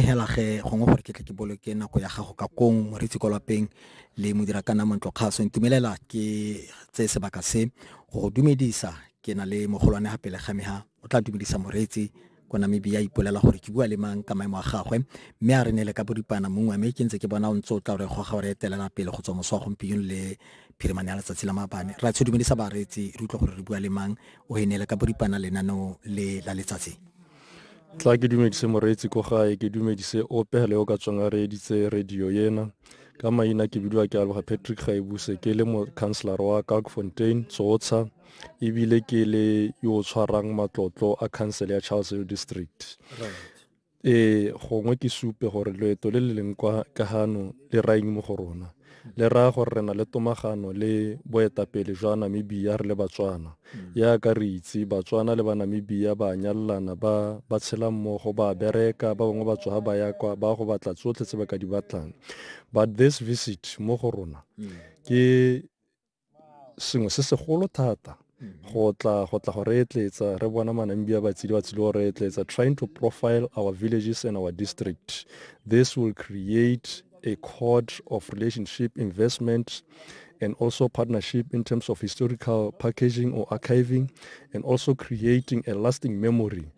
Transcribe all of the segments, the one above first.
hela ge gongwe gore ke tle ke boloke nako ya gago ka kong moretsi kwa lapeng le modira ka nna kgaso ntumelela ke tse sebaka se go go dumedisa ke na le mogolwane ga pele ga me ha o tla dumedisa moretsi ko namibia ipolela gore ke bua le mang ka maemo a gagwe mme a re ne le ka boripana mongwe mme ke ntse ke bona o ntse o tla gore goga gore etelela pele go tswa moso wa gompieno le phirimane ya letsatsi la maabane ra tsho dumedisa bareetsi re utlwa gore re bua le mang o e ne le ka boripana lenaneo le la letsatsi tla ke dumedise moreetsi ko gae ke dumedise ope le o ka tswang a reeditse radio ena ka maina ke bidiwa ke aloga patrick gaebuse ke le mocounselara wa kagfontein tsotsha ebile ke le yo o tshwarang matlotlo a council ya charles hill district ee gongwe ke supe gore loeto le le leng kwa ka gano le raya eng mo go rona le raya gore re na le tomagano le boetapele jwa namibia re le batswana yaka re itse batswana le banamibia ba nyalelana ba ba tshela mmogo ba bereka ba bangwe ba tswa ba ya kwa ba go batla tsotlhe tse ba ka di batlang but this visit mo go rona ke sengwe se segolo thata mm-hmm. go tla go tla go re etletsa re bona manambi a batshedi ba tshile go re etletsa trying to profile our villages and our district this will create a code of relationship investment and also partnership in terms of historical packaging or archiving, and also creating a lasting memory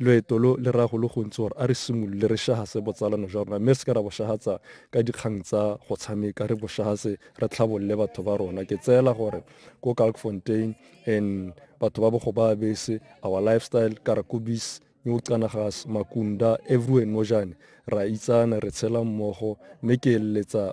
Loeto lo le raya go le gontsi gore a re simolole re shahase botsalano jwa rona mme re se ke ra bo shahatsa ka dikgang tsa go tshameka, re bo shahase re tlhabolole batho ba rona. Ke tseela gore ko Kalkfontein and batho ba bogo ba bese, our lifestyle, Karakubis, New Canagas, Makunda, everywhere nojane ra itsana, re tshela mmogo mme ke eletsa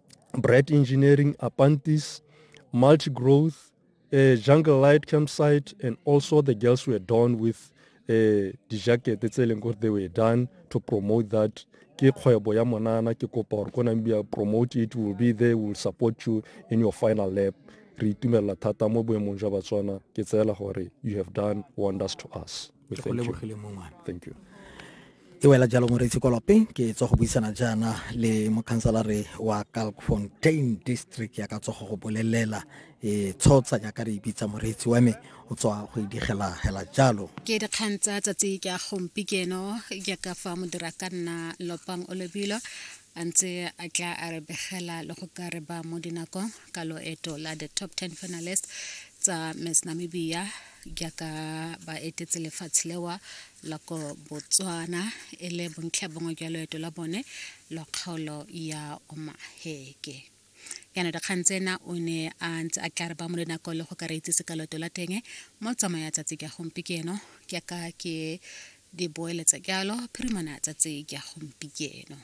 Bright Engineering, Apantis, Multi Growth, uh, Jungle Light Campsite, and also the girls were done with uh, dijakete tse leng gore they were done to promote that ke kgwebo ya monana ke kopa gore ko namibia promote it will be there will support you in your final lap re itumelela thata mo boemong jwa batswana ke tseela gore you have done wonders to us ke go lebogile mo ngwana thank you e wela jalo moreitse kolope ke tswa go buisana jaana le mokhansalare wa calfontain district ya ka tsogo go bolelela e tshotsanya jaaka re ibitsa moreitsi wa me o tswa go idigela hela jalo ke dikgang tsa tsatsi ke a gompi keno jaaka fa modira ka nna lopang o lebilo a ntse a tla a re begela le go ka re ba mo dinakong ka loeto la the top 10 finalist tsa miss namibia jaaka ba etetse lefatshe lewa la ko botswana e le bontlha bongwe jwa loeto la bone lwa kgaolo ya omaheke yana dikgang tsena o ne a ntse a tla re ba mo le nako le go ka re itsise ka loto la teng mo tsamaya tsatsi ka gompieno ke ka ke di boeletsa jalo phirimana tsatsi ka gompieno